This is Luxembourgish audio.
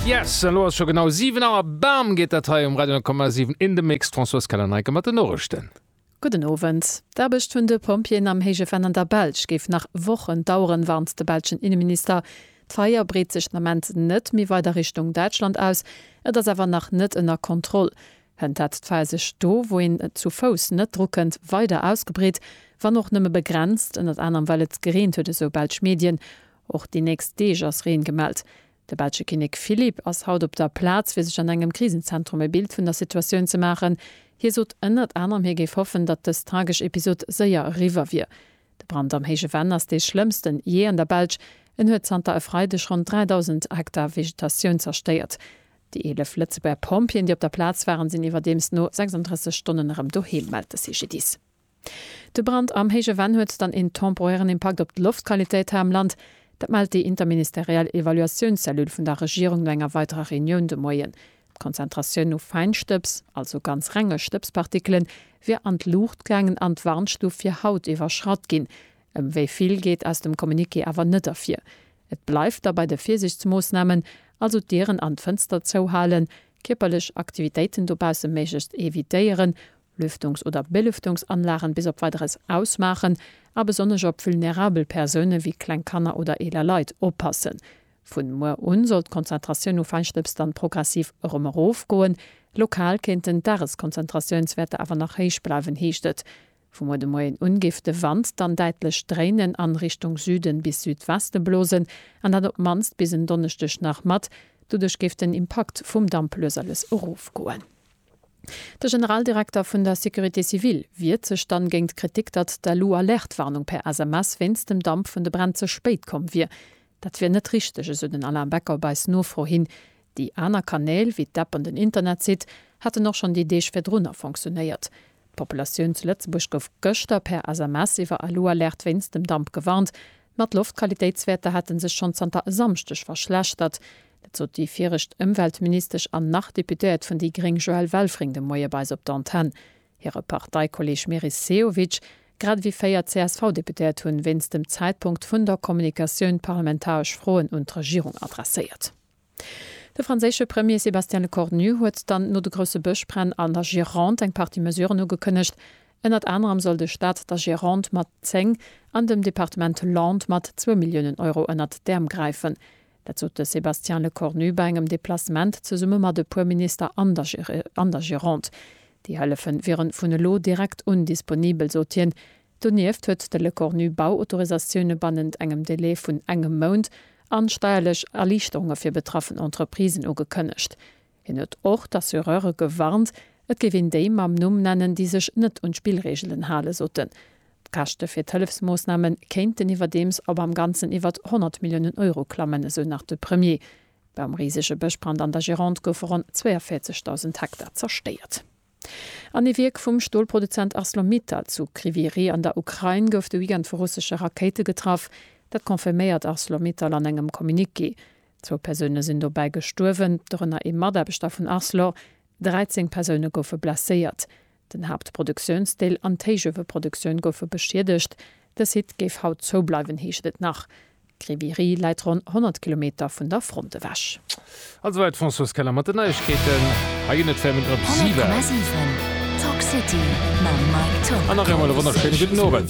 Yes, an elo ass scho genau 7 Auer, bam geet dat hei um Radio 10,7 in the mix. D'Françoise Keller-Neike mat den Noriichten. Gudden Owend. D'Aarbecht vun de Pompjeeën am héije Venn an der Belsch géif nach Wochen daueren, warnt de belschen Inneminister. D'Feier breet sech den Ament net méi weider Richtung Däitschland aus, et ass awer nach net ënner Kontroll. Kënnt dat d'Feier sech do, wou een et zu Fouss net drukënnt, weider ausgebreet, wann och nëmme begrenzt, ënnert anerem well et gereent huet, esou belsch Medien. Och déi nächst Deeg ass Reen gemellt. De belsche Kinnek Philippe ass haut op der Plaz fir sech an engem Krisenzentrum e Bild vun der Situatioun ze maachen. Hie sot ënnert anerem hie géif hoffen, datt dës tragesch Episod séier eriwwer wier. De Brand am Héije Venn ass dee schlëmmsten jee an der Belsch. En huet zanter e Freideg ronn 3.000 Hektar Vegetatioun zerstéiert. Déi 11 Lëtzebuerger Pompjeeën, déi op der Plaz waren, sinn iwwerdeems no 36 Stonnen erëm doheem, mellt de CGDIS. De Brand am Héije Venn huet dann een temporären Impakt op d'Loftqualitéit hei am Land. Dat mellt déi interministeriell Evaluatiounscellule vun der Regierung no enger weiderer Reunioun de Moien. D'Konzentratioun u Feinstëbs, also ganz renge Stëbspartikelen, wier an d'Luucht gaangen an d'Warnstuf fir haut iwwerschratt ginn. Ëm wéi vill geet aus dem Communiqué awer net ervir. Et bleift da bei de Virsiichtsmoossnamen, also d'Dieren an d'Fënster zouhalen, kierperlech Aktivitéiten dobausse méiglechst evitéieren, Lüftungs oder Belüftungsanlagen bis op Weideres ausmaachen a besonnesch op vulnerabel Persounen wéi kleng Kanner oder eeler Leit oppassen. Vun muer un soll d'Konzentratioun u Feinstëbs dann progressiv erëm erof goen. Lokal kéinten d'Dageskonzentratiounswäerter awer nach héich bleiwen, heescht et. Vu muer de Moien un géif de Wand dann däitlech dréinen an Richtung Süden bis Südweste blosen an dat op mannst bis en Donneschdeg nach mat. Doduerch géif den Impakt vum Damp lues a lues erof goen. De Generaldirekter vun der Sécurité civile wiert sech dann géint d'Kritik, datt d'Alu-Alerte-Warnung per SMS wéinst dem Damp vun de Bränn ze spéit komm wier. Dat wier net richteg, esou den Alain Becker op eis Nofro hin. Déi aner Kanäl, wéi d'App an den Internetsite, hätten och schonn déi Deeg virdrunner fonctionéiert. D'Populatioun zu Lëtzebuerg gouf gëschter per SMS iwwer Alu-Alerte wéinst dem Damp gewarnt. Ma d'Loftqualitéitswäerter hate sech schonn zanter e Samschdeg verschlechtert. Dat sot déi viregt Ëmweltministesch an nach Deputéiert vun déi gréng Joëlle Welfring de Moie bei eis op der Antenn. Hire Parteikolleeg Meris Sehovic, grad ewéi véier CSV-Deputéiert hunn wéinst dem Zäitpunkt vun der Kommunikatioun parlamentaresch Froen un d'Regierung adresséiert. De franséische Premier Sébastien Lecornu huet dann no de grousse Bëschbränn an der Gironde eng Partie Mesuren ugekënnegt. Ënnert anerem soll de Staat der Gironde mat 10 an dem Departement Landes mat zwou Milliounen Euro ënnert d'Äerm gräifen. Dat sot de Sébastien Lecornu bei engem Deplacement zesumme mat e puer Minister an der Gironde. Déi Hëllefe wiere vun elo direkt un disponibel, sot hien. Donieft huet de Lecornu Bauautorisatioune bannent engem Delai vun engem Mount an steierlech Erliichterunge fir betraffen Entreprisen ugekënnegt. Hien huet och d'Assureure gewarnt, et géif een déi mam Numm nennen, déi sech net un d'Spillreegelen hale soten. D'Käschte fir d'Hëllefsmoossname kéinten iwwerdeems op am Ganzen iwwert 100 Milliounen Euro klammen, esou nach de Premier. Beim risege Bëschbrand an der Gironde goufe ronn 42.000 Hektar zerstéiert. An ee Wierk vum Stolproduzent Arcelor-Mittal zu Kryvyi Rih an der Ukrain gouf de Weekend vu russesche Rakéite getraff. Dat confirméiert Arcelor-Mittal an engem Communiqué. Zwou Persoune sinn dobäi gestuerwen, dorënner ee Mataarbechter vun Arcelor. 13 Persoune goufe blesséiert. Den Haaptproduktiounsdeel an d'Héichueweproduktioun goufe beschiedegt. De Site géif haut zoubleiwen, heescht et nach. Kriviri läit ronn 100 Kilometer vun der Front ewech. A souwäit d'Françoise Keller mat den Neiegkeeten. Hei ginn et Fémmen op Siwel. An nach eemol e wonnerschéine gudden Owend.